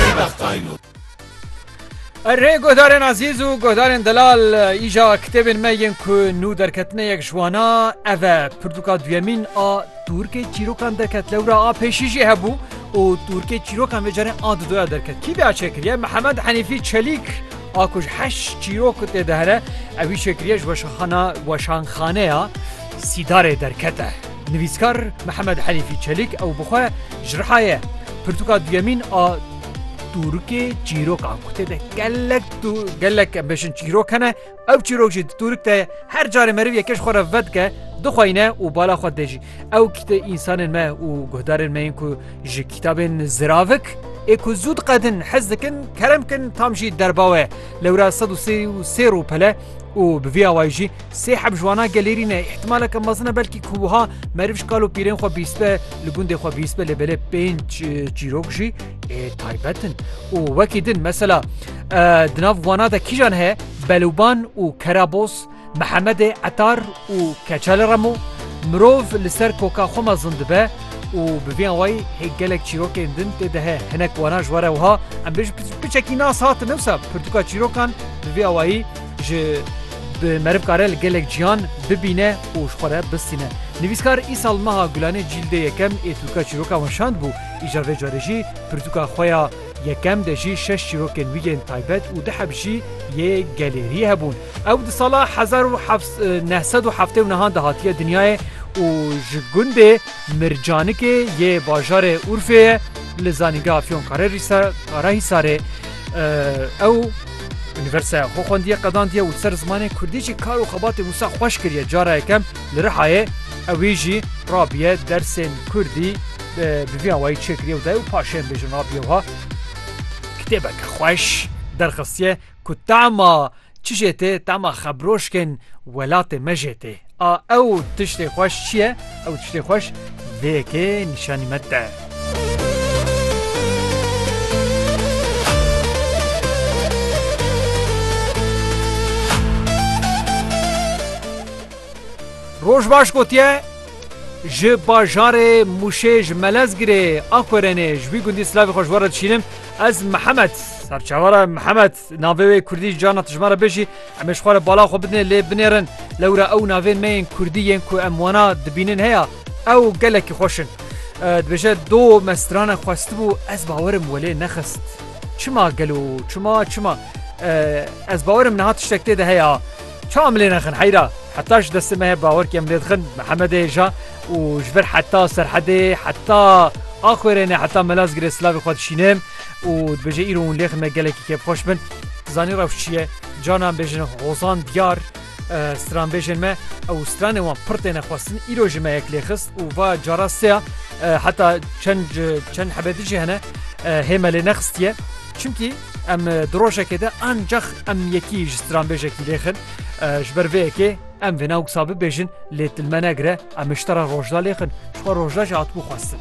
Pê bextayno. Erê guhdarên ezîz û guhdarên delal îja kitêbên me yên ku nû derketine yek ji wan a ev e pirtûka duyemîn a tûrkê çîrokan derket lewra a pêşî jî hebû û tûrkê çîrokan vê carê a didoya derket kî vê a çêkiriye mihemed henîfî çelîk a ku ji heşt çîrok tê de here ewî çêkiriye ji weşanxana weşanxaneya sîdarê derkete Nivîskar Mihemed Helîfî Çelîk ew bi xwe ji riha ye. Pirtûka duyemîn a tûrikê çîrok a ku tê de gelek gelek em bêjin çîrok hene. Ew çîrok jî di tûrik de her carê meriv yekê ji xwe re vedike, dixweyne û bala xwe dê jî. Ew kîte însanên me û guhdarên me yên ku ji kîtabên ziravik ê ku zû diqedin hez dikin, kerem kin tam jî derba we. Lewra sed û sê û sê rûpele û bi vî awayî jî Sê heb ji wana gelêrî ne, îhtimaleke mezin e belkî ku wiha meriv ji kal û pîrên xwe bîstbe, li gundê xwe bîstbe lê belê pênc çîrok jî ê taybet in û wekî din. Mesela di nav wana de kîjan heye? Belûban û Kerabos, Mihemedê Etar û Keçel Remo. Mirov li ser koka xwe mezin dibe û bi vê awayî hê gelek çîrokên din tê de he. Hinek wana ji we re wiha em bêjin, piçekî nas hatine wisa pirtûka çîrokan bi vê awayî, Ji bi meriv kare li gelek cihan bibîne û ji xwe re bistîne. Nivîskar îsal meha Gulanê cîldê yekem ê tûrka çîroka wan şandbû, îja vê carê jî pirtûka xwe ya yekem de jî şeş çîrokên wî yên taybet û du heb jî yê gelêriyê hebûn. Ew di sala hezar û heft neh sed û heftê û nehan de hatiye dinyayê û ji gundê Mircanikê yê bajarê Urfê ye li zanîngeha Fiyonkarehîsarê ew Unîversîteya xwe xwendiye qedandiye û ser zimanê kurdî jî kar û xebatê wisa xweş kiriye cara yekem li Rihayê ewî jî rabiye dersên kurdî bi vî awayî çêkiriye û dayê û paşên bêjin rabiye wiha kitêbeke xweş derxistiye ku tema çi jê tê tema xebroşkên welatê me jê tê. A ew tiştê xweş çi ye? Ew tiştê xweş vê yekê nîşanî me de. Rojbaş gotiye, ji bajarê Mûşê ji Melezgirê a Korenê ji wî gundî silavê xwe ji we re dişînim. Ez Mihemed, serçavara Mihemed. Navê wê Kurdî carna tijma re bêjî em ê ji xwe re bala xwe bidinê lê binêrin. Lewra ew navên me yên Kurdî yên ku em wana dibînin heya ew gelekî xweş in. Dibêje do me strana xwestibû ez bawerim welê nexist. Çima gelo çima çima ez bawerim niha tiştek tê de heya. Çawa em lê nexin heyra heta ji destê me heye bawerkî em lê dixin Mihemedê ja û ji vir heta serhedê heta Axwêrêne heta Melazgirê silavê xwe dişînim. û dibêje îro hûn lêxin me gelekî kêfxweş bin. Zanî rewş çi ye? Canan bêjin hozan diyar stranbêjên me ew stranê wan pir têne xwestin îro ji me yek lêxist û va cara seya heta çend çend hebedî jî hene hê me lê nexistiye. Çimkî em di rojekê de ancax em yekî ji stranbêjekî lêxin ji ber vê yekê em vêna wisa bibêjin lê dil me negire em ji te re rojda lêxin ji xwe rojda jî hatibû xwestin.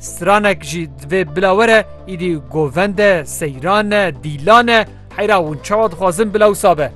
Stranek jî divê bila were îdî govend e, seyran e, dîlan e heyra hûn çawa dixwazin bila wisa be?